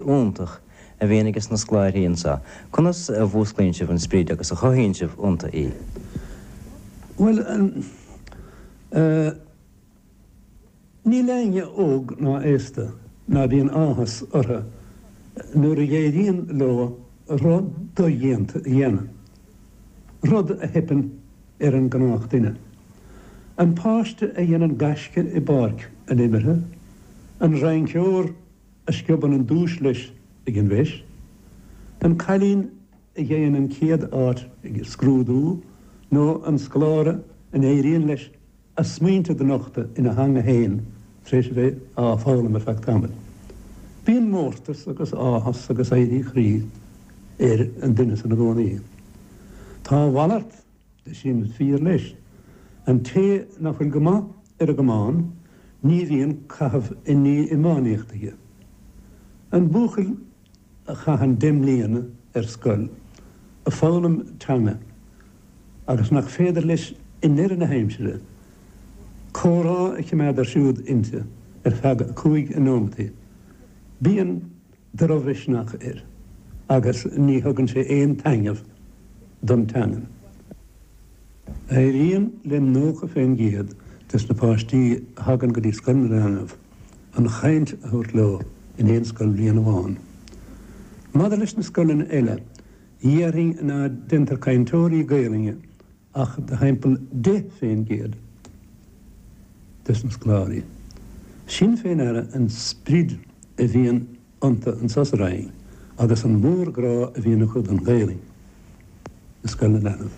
iontach a bhíonn aige sna scláirthí anseo, conas a mhúsclaíonn sibh an sprid agus a chothaíonn sibh iontu í? Bhuel, eh, níl éinne óg ná aosta ná bíonn áthas orthu nuair a éiríonn leo rud dodhéanta a dhéanamh, rud a theipeann ar an ngnáthdhuine. An páiste a dhéanann gaisce i bpáirc an imeartha, an rinceoir a sciobann an duais leis ag an bhFeis, an cailín a gheibheann an chéad áit ag scrúdú, nó an scoláire a n-éiríonn leis a smaointe do nochtadh ina theanga fhéin tar éis a bheith á foghlaim ar feadh tamaill. Bíonn mórtas agus áthas agus éirí croí ar an duine san i gcónaí. Tá a mhalairt Sin fíor leis. An té nach bhfuil go maith ar an gcamán, ní bhíonn caitheamh i ndiaidh iománaíocht aige. An buachaill a chaitheann deich mbliana ar scoil ag foghlaim teanga agus nach féidir leis i ndeireadh na haimsire comhrá a chimeád ar siúl inti ar feadh cúig nóimeataí, bíonn drochmhisneach air agus ní thugann sé aon taitneamh don teangain. Éiríonn le 90% des na páistí a thagann go dtí Scoil na Leanbh an chaint a thabhairt leo in aon scoilbhliain amháin. Maidir leis na scoileanna eile, dhéarfainn ná déantar cainteoirí Gaelainne ach de thimpeall deich fén gcéad des na scoláirí. Sin fé ndeara an sprid a bhíonn iontu anso sa Rinn agus an mórghrá a bhíonn acu don Ghaelainn i scoil na leanbh.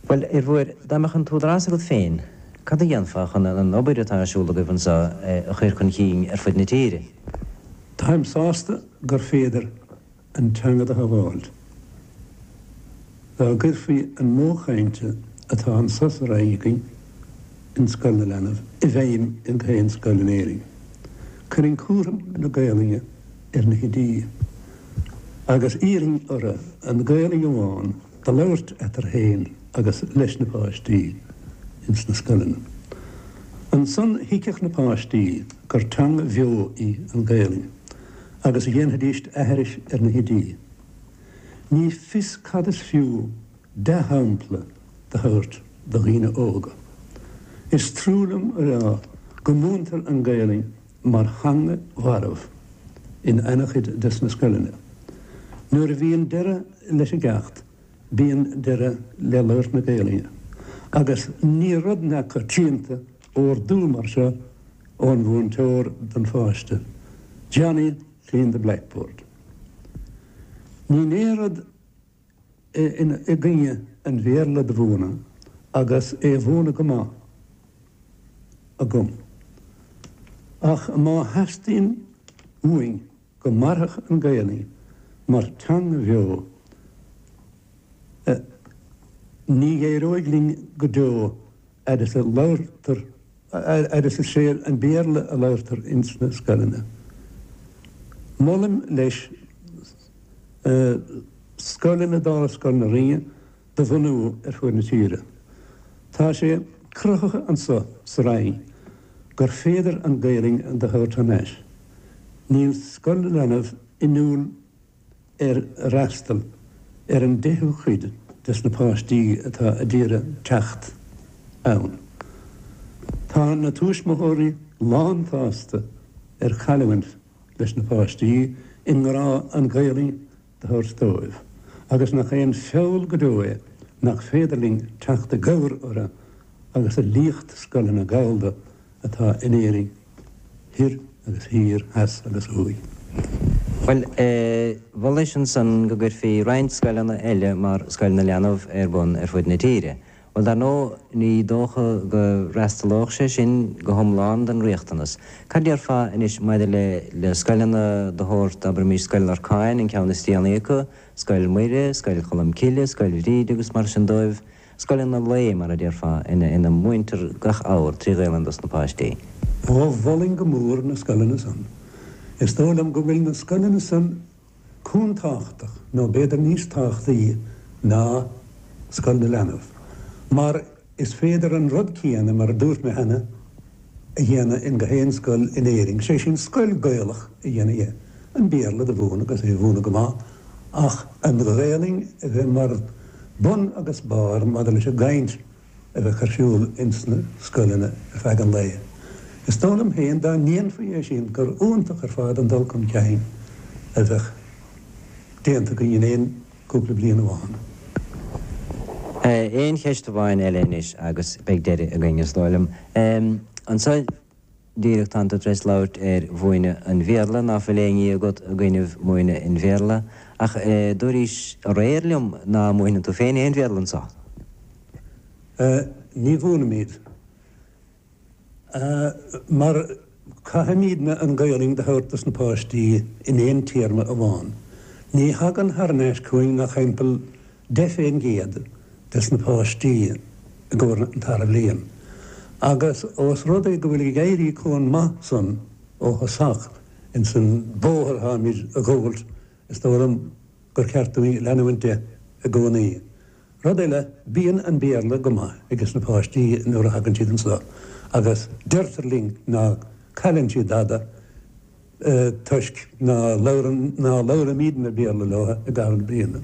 Bhuel, a Fhir Mhóir, dá mbeadh an t-údarás agat féin, cad a dhéanfá chun an obair atá ar siúl agaibh anso a chur chun cinn ar fud na tíre? Táim sásta gur féidir an teanga do shabháilt. Dá gcuirfí an modh cainte atá anso sa Rinn againn in Scoil na Leanbh i bhfeidhm in gach aon scoil in Éirinn, cuirfinn cúram na Gaolainne ar na hoidí, agus iarrfainn orthu an Ghaolainn amháin do labhairt eatarthu féin agus leis na páistí ins na scoileanna. Ansan thuigfeadh na páistí gur teanga bheo í an Ghaolainn. agus a dhéanfaidís aithris ar na hoidí. Ní fios cad is fiú dea-shampla do thabhairt do dhaoine óga. Is trua liom a rá go múintear an Ghaelainn mar theanga mharbh in an-chuid des na scoileanna. Nuair a bhíonn deireadh leis an gceacht bíonn deireadh le labhairt na Gaelainne agus ní rud neamhchoitianta ordú mar seo ón mhúinteoir don pháiste, 'Johnny, clean the blackboard'. Níl aon rud i gcoinne an Bhéarla do mhúineadh agus é mhúineadh go maith agam, ach má theastaíonn uainn, go mairfeadh an Ghaelainn mar theanga bheo, ní éireoidh linn go deo fhad is a labhartar, fhad is is é an Béarla a labhartar ins na scoileanna. Molaim, leis, scoileanna mar Scoil na Rinne de bhunú ar fuaid na tíre. Tá sé cruthaithe anso sa Rinn gur féidir an Ghaelainn do thabhairt thar n-ais. Níl Scoil na Leanbh inniúil ar fhreastal ar an deichiú cuid des na páistí atá a d'iarraidh teacht ann. Tá na tuaismitheoirí lánsásta ar chailliúint leis na páistí i ngrá an Ghaelainn thabhairt dóibh, agus nach é an feall go deo é nach féidir linn teacht i gcabhair orthu agus a liacht scoileanna Gallda atá in Éirinn thoir agus thiar theas agus thuaidh. Bhuel, mholais ansan go gcuirfí roinnt scoileanna eile mar Scoil na Leanbh ar bun ar fud na tíre, Bhuel, dar ndóigh, ní dócha go bhfreastalódh sé sin go hiomlán don riachtanas. Cad déarfá anois maidir le scoileanna de shórt, abraimis, Scoil Lorcáin, an ceann is déanaí acu, Scoil Mhuire, Scoil Cholm Cille, Scoil Bhríde agus mar sin dóibh, scoileanna lae, mar a déarfá, ina múintear gach abhar trí Ghaelainn dos na páistí? Ó, mholfainn go mór na scoileanna san. Is dóigh liom go bhfuil na scoileanna san Comh tábhachtach, nó b'fhéidir níos tábhachtaí ná Scoil na Leanbh, mar is féidir an rud céanna, mar a dúirt mé cheana, a dhéanamh in go haon scoil in Éirinn, sé sin scoil Gaelach a dhéanamh dhe, an Béarla do mhúineadh agus é mhúineadh go maith, ach an Ghaelainn a bheith mar bun agus barr maidir leis an gcaint. a bheadh ar siúl ins na scoileanna ar feadh an lae. Is dóigh liom féin, dá ndéanfaí é sin, gur iontach ar fad an dul cun cinn a bheadh déanta againn in aon cúpla bliain amháin. Aon cheist amháin eile anois agus beidh deireadh againn, is dóigh liom. Anso. díreach tánn tú tar éis labhairt ar mhúineadh an Bhéarla, ná fuil aon ní agat i gcoinnibh múineadh an Bhéarla, ach dúraís aréir liom ná múineann tú féin aon Bhéarla anso. Ní mhúinimíd, mar caithfimídne an Ghaelainn do thabhairt do sna páistí in aon téarma amháin. Ní thagann thar n-ais chugainn ach timpeall 10% des na páistí i gcomhair an tarna bliain agus ós rud é go bhfuil ag éirí chomh maith san ó thosach ins an bóthar atáimid a ghabháilt is dóigh liom gur ceart dúinn leanúint de i gcónaí. Rud eile bíonn an Béarla go maith ages na páistí nuair a thagann siad anso agus deirtear linn ná cailleann siad dada toisc nár labhraímid aon Bhéarla leo i gcaitheamh na bliana.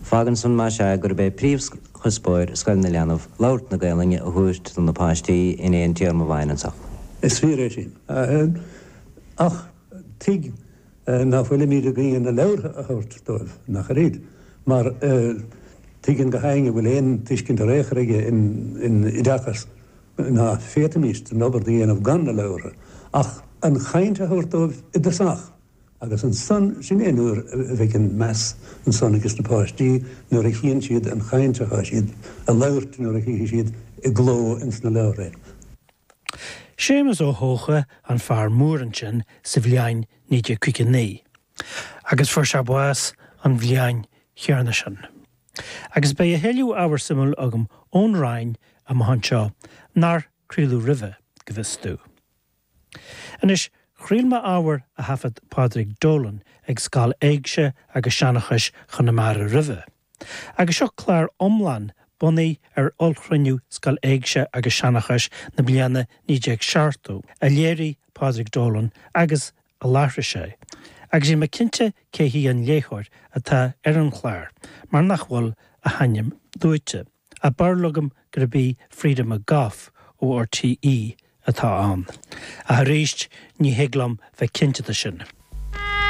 Fágann san mhuise gurb é príomhchuspóir scoileanna leanbh labhairt na Gaelainne a thabhairt do na páistí in aon téarma amháin anso. Is fíor é sin. Ach tuig nach bhfuilimid ag aon a leabhartha a thabhairt dóibh, nach oiread? Mar tuigeann go hainn go bhfuil aon tuiscint ar aon chor aige i dtaca ná féadfaimís an obair do dhéanamh gan na leabhra, ach an chaint a thabhairt dóibh i dtosach, agus ansan, sin é an uair a bheidh an meas ansan ages na páistí, nuair a chíonn siad an chaint atá siad a labhairt, nuair a chífidh siad i gcló ins na leabhra é. Séamus Ó hEocha, an fear mór ansin, sa bhliain 1959. agus fuair sé bás an bhliain chéanna sin. Agus beidh a thuilleadh ábhar suimiúil agam ón Rinn amach anseo, nár craoladh roimhe, go bhfios domh. Anois, chraol mé ábhar a thaifead Pádraig Dolan ag Scoil Éigse agus Seanchais Chonamara roimhe, Agus seo clár iomlán bunaithe ar ollchruinniú Scoil Éigse agus Seanchais na bliana 1970, a léirigh Pádraig Dolan agus a láithrigh sé, agus níl mé cinnte cé hí an léitheoir atá ar an chlár mar nach bhfuil a hainm luaite, ach bheir leagam gurb í Frieda McGough ó RTÉ atá ann, ach arís ní thig liom bheith cinnte de sin.